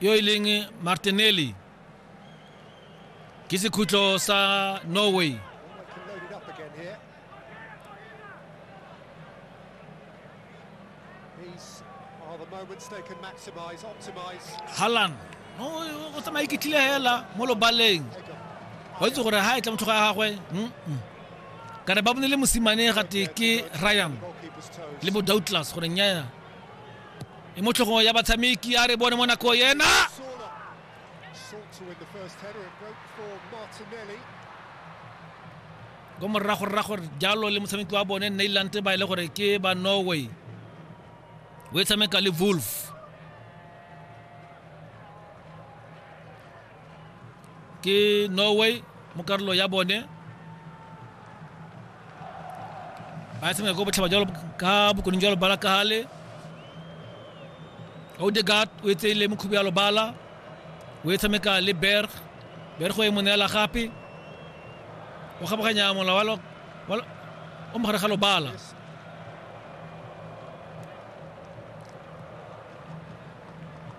yo e leng martinelli ke sekhutlo sa norway halan o tsamaye ke tlile hela mo lobaleng wa itse gore ha e tla motlhogo ya gagwe kana ba bone le mosimane gate ke ryan le bo douglas gore nyaya e mo tlhogong ya batshameki a re bone mo nako yena ko morago rra gore jalo le motshameki wa bone nailand ba e le gore ke ba norway o e tshameka le wolf ke norway mo karolo ya bone ba tshameka ko botlhaba jalo ka bokoning jwa lobala ka gale odegat o e tseile mokhubi ya lobala o e tshameka le berg berg o e mo neela gape o kgabaganya mola wa lo- wa lo- o mogare ga lobala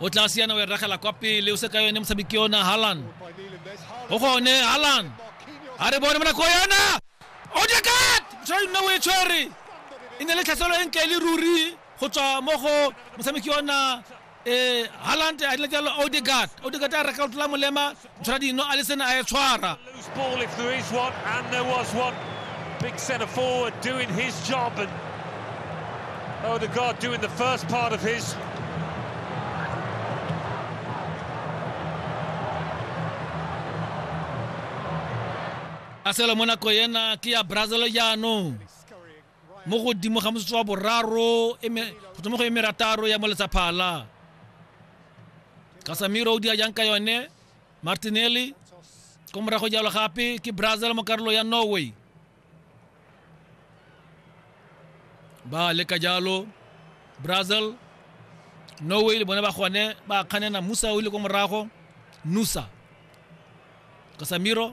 o tla siana o e ragela kwa pele o se ka yone motshameki yona halan o gone halan a re bone monako yona odekat tshwari nna o e tshwere e ne le tlhaselo e ntle le ruri go tswa mo go motshameki yona um eh, halante a dila jalo odegat odegat a reka o tlola molema Ntshwaradino a le sene a e tshwara Big centre forward doing his job and Odegaard oh, doing the first part of his a selo mo nako ena ke ya brazil jaanong mo godimo ga motsotso wa boraro go tswa mo go emerataro ya moletsaphala kasamiro o dira jang ka yone martinelli ko morago jalo gape ke brazil mo karolo ya norway ba leka jalo brazil norway le bone ba gone ba kganena musa o ile ko morago nusa kasamiro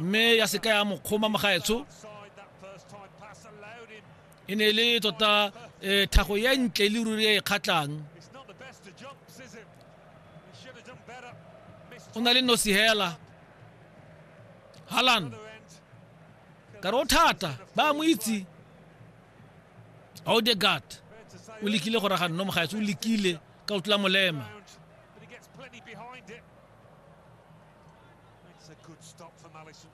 mme ya seka ya mokgoma mogaetsho e ne e le tota um thago ya ntle e le ruri e e kgatlhang o na le nosi hela halan ka re o thata ba mo itse audegard o lekile go raga nno mogaetsho o lekile ka o tlola molema Makes a good stop from Allison.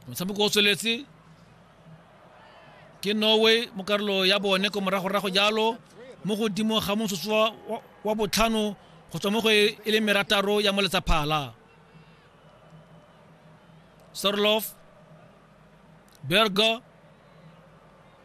motshameko o tsweletse ke norway mo karolo ya bone ko moragorago jalo mo godimo ga motsotso wa, wa, wa botlhano go tswa mo go e, e le merataro ya moletsaphala sorlof berger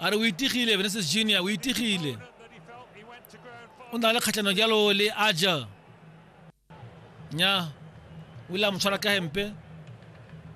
a re o itigile Vinicius Junior o itigile o na le kgatlhanong jalo le aja nya o ile a mo tshwara ka hempe